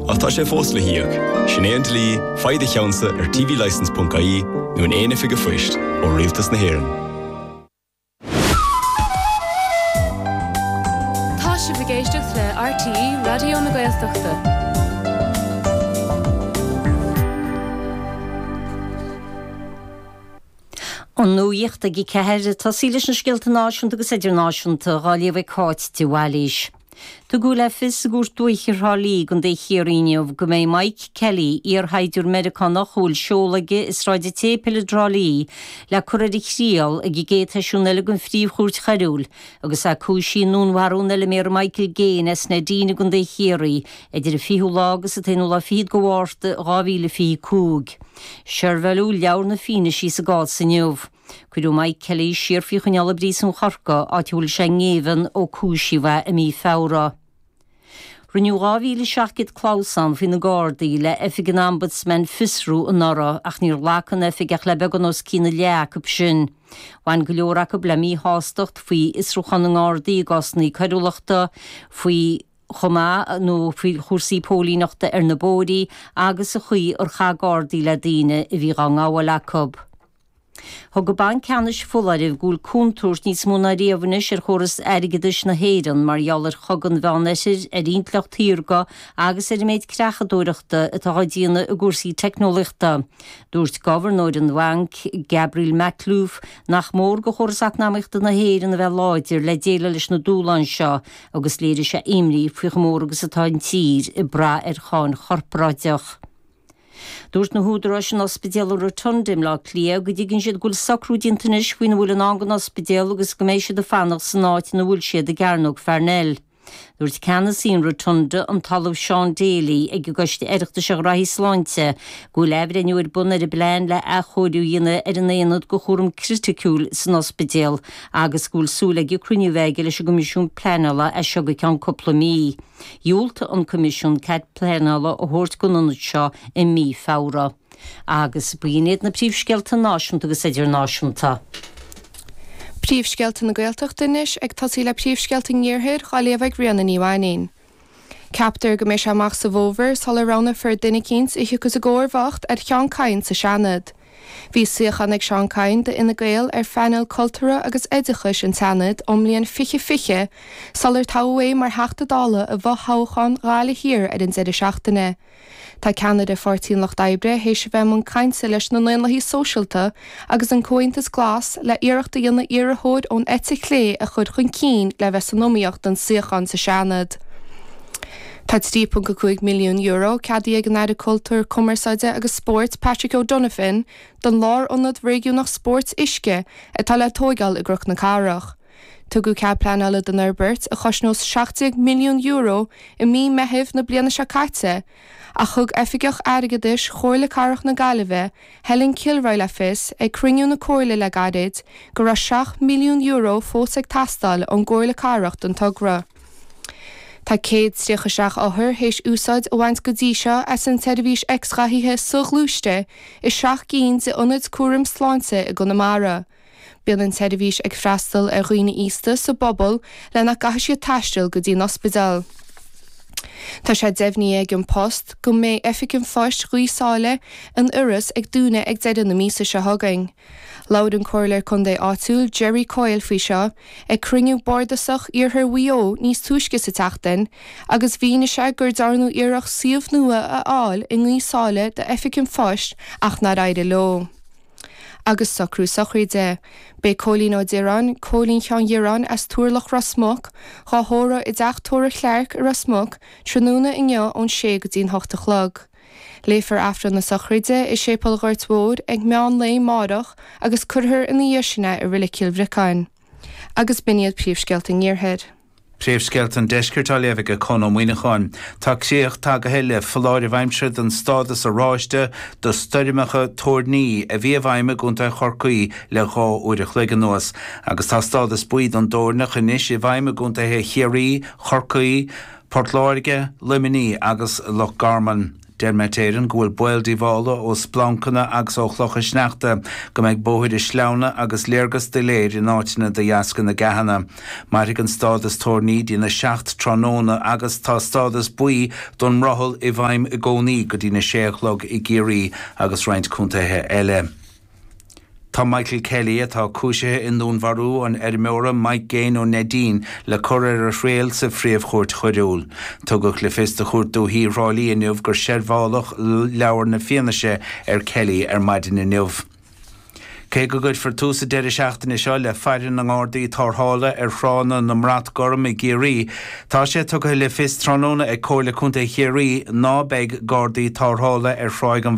Ach tá sé fós le híoc. Sin é an dlí, faigh do cheannsa ar TVLicense ponc ie nó in aon oifig a'phoist, ó Rialtas na hÉireann. Tá sibh ag éisteacht le RTÉ Raidió na Gaeltachta. An nuacht ag a ceathair. Tosaíonn leis na scéalta náisiúnta agus idirnáisiúnta, á léamh ag Cáit de Bhailís. Tugadh le fios ag Cúirt Dúiche Thrá Lí i gContae Chiarraí inniu go mbeidh Mike Kelly, iar-shaighdiúir Meiriceánach a bhfuil seoladh aige i Sráid an tSéipil i dTrá Lí, le cur ar a thriail ag an gcéad sheisiún eile den Phríomh-Chúirt Choiriúil agus é cúisithe i ndúnmharú an fheilméara Michael Gaine as Neidín i gContae Chiarraí idir an 20ú lá agus an t-aonú lá fichead de Mhárta 2025. Seirbheáileadh leabhar na fianaise sa gcás inniu. Cuireadh Mike Kelly siar faoi choinneáil i bpríosún Chorca, áit a bhfuil sé i ngéibheann ó cúisíodh é i mí Feabhra. Rinneadh 2,700 clamhsán faoi na Gardaí le Oifig an Ombudsman Fiosrú anuraidh ach níor ghlac an oifig ach le beagán os cionn a leath acu sin. Bhain go leor acu le míshástacht faoi fhiosrúchán na nGardaí i gcásanna coiriúlachta, faoi chomh maith nó faoi chúrsaí póilíneachta ar na bóithrí agus an chaoi ar chaith Gardaí le daoine a bhí á ngabháil acu. Thug an Banc Ceannais foláireamh go bhfuil contúirt níos mó ná riamh anois ar chóras airgeadais na hÉireann mar gheall ar Chogadh an Mheán Oirthir, an intleacht shaorga agus ar an méid creachadóireachta atá á déanamh i gcúrsaí teicneolaíochta. Dúirt Gobharnóir an Bhainc, Gabriel Makhlouf, nach mór do chóras eacnamaíochta na hÉireann a bheith láidir le déileáil leis na dúshláin seo agus léirigh sé imní faoi chomh mór agus atá an tír ag brath ar cháin chorparáideach. Dúirt na húdaráis in Ospidéal an Rotunda i mBleá Cliath go dtuigeann siad go bhfuil socrú déanta anois faoina bhfuil i ndán don ospidéal agus go mbeidh siad ag fanacht san áit ina bhfuil siad i gCearnóg Pharnell. Dúirt ceannasaí an Rotunda, an tOllamh Seán Daly, ag an gCoiste Oireachtais um Ghnóthaí Sláinte go bhfuil athbhreithniú ar bun ar an bplean le athchóiriú a dhéanamh ar an aonad do chúram criticiúil san ospidéal agus go bhfuil súil aige cruinniú a bheith aige leis an gCoimisiún Pleanála as seo go ceann cúpla mí. Dhiúltaigh an Coimisiún cead pleanála a thabhairt don ionad seo i mí Feabhra. Agus b'in iad na príomhscéalta náisiúnta agus idirnáisiúnta. Príomhscéalta na Gaeltachta anois, ag tosaí le príomhscéalta an iarthair, dhá léamh ag Ríona Ní Mhainnín. Ceaptar go mbeidh sé amach sa bhfómhar sular roghnaífear duine eicínt a thiocfas i gcomharbacht ar Sheán Kyne sa Seanad. Bhí suíochán ag Seán Kyne d'Fhine Gael ar phainéal cultúrtha agus oideachais an tSeanaid ón mbliain fiche fiche sular toghadh é mar Theachta Dála i bhfothoghchán Ghaillimh Thiar ar an deireadh seachtaine. Tá ceannaire Pháirtí an Lucht Oibre théis a bheith i mbun cainte leis na nDaonlathaí Sóisialta agus an Comhaontas Glas le iarracht a dhéanamh iarrthóir ón eite chlé a chur chun cinn le bheith san iomaíocht don suíochán sa Seanad. Tá €3.5 milliún ceadaithe ag an Aire Cultúir, Cumarsáide agus Spóirt, Patrick O'Donovan, don lárionad réigiúnach spóirt uisce atá le tóigeáil i gCnoc na Cathrach. Tugadh cead pleanála don fhorbairt, a chosnós €17 milliún, i mí Meithimh na bliana seo caite ach thug Oifigeach Airgeadais Chomhairle Cathrach na Gaillimhe, Helen Kilroy le fios ag cruinniú na Comhairle le gairid go raibh €7 milliún fós ag teastáil ón gComhairle Cathrach don togra. Tá céad tríocha seacht othar théis úsáid a bhaint go dtí seo as an tseirbhís x-ghathaithe so-ghluaiste i seacht gcinn de ionaid cúraim sláinte i gConamara. Bíonn an tseirbhís ag freastal ar dhaoine aosta sa bpobal le nach gcaithfidh siad taisteal go dtí an ospidéal. Tá sé deimhnithe ag An Post go mbeidh Oifig an Phoist Ghaoth Sáile in Iorras ag dúnadh ag deireadh na míosa seo chugainn. Labhair an Comhairleoir Contae áitiúil Gerry Coyle faoi seo ag cruinniú bardasach Iarthar Mhaigh Eo níos túisce sa tseachtain agus mhínigh sé gur dearnadh iarracht suíomh nua a fháil i nGaoth Sáile do oifig an phoist ach nár éirigh leo. Agus socrú sochraide. Beidh Cóilín Ó Direáin, Cóilín Sheáin Dhireáin as Turlach Ros Muc, dhá thórramh i dTeach Tórraimh Chlarke i Ros Muc tráthnóna inniu ón sé go dtí'n hocht a chlog. Léifear Aifreann na Sochraide i Séipéal Ghoirt Mhóir ag meán lae a máireach agus cuirfear ina dhiaidh sin é i Roilig Cill Bhriocáin. Agus b'in iad príomhscéalta an Iarthair. Príomhscéalta an Deiscirt á léamh aige Conn Ó Muíneacháin. Tá críoch tagaithe le foláireamh aimsire den stádas oráiste do stoirmeacha toirní a bhí i bhfeidhm i gContae Chorcaí le dhá uair a chloig anuas agus tá stádas buí don dtoirneach anois i bhfeidhm i gContaetha Chiarraí, Chorcaí, Port Láirge, Luimnigh agus Loch Garman. Deir Met Éireann go bhfuil baol díobhála ó splancanna agus ó chlocha sneachta go mbeidh bóithre sleamhna agus léargas doiléir in áiteanna de dheasca na gceathanna. Mairfidh an stádas toirní dtí na seacht tráthnóna agus tá stádas buí don mbrothall i bhfeidhm i gcónaí go dtí na sé a chlog i gCiarraí agus roinnt contaetha eile. Tá Michael Kelly, atá cúisithe i ndúnmharú an fheirmeora Mike Gaine ó Neidín, le cur ar a thriail sa Phríomh-Chúirt Choiriúil. Tugadh le fios do Chúirt Dúiche Thrá Lí inniu gur seirbheáladh leabhar na fianaise ar Kelly ar maidin inniu. Cé go gcuirfear tús an deireadh seachtaine seo le faire na nGardaí Tárthála ar thránna na mBrat Gorm i gCiarraí, tá sé tugtha le fios tráthnóna ag Comhairle Contae Chiarraí ná beidh Gardaí Tárthála ar Thráigh an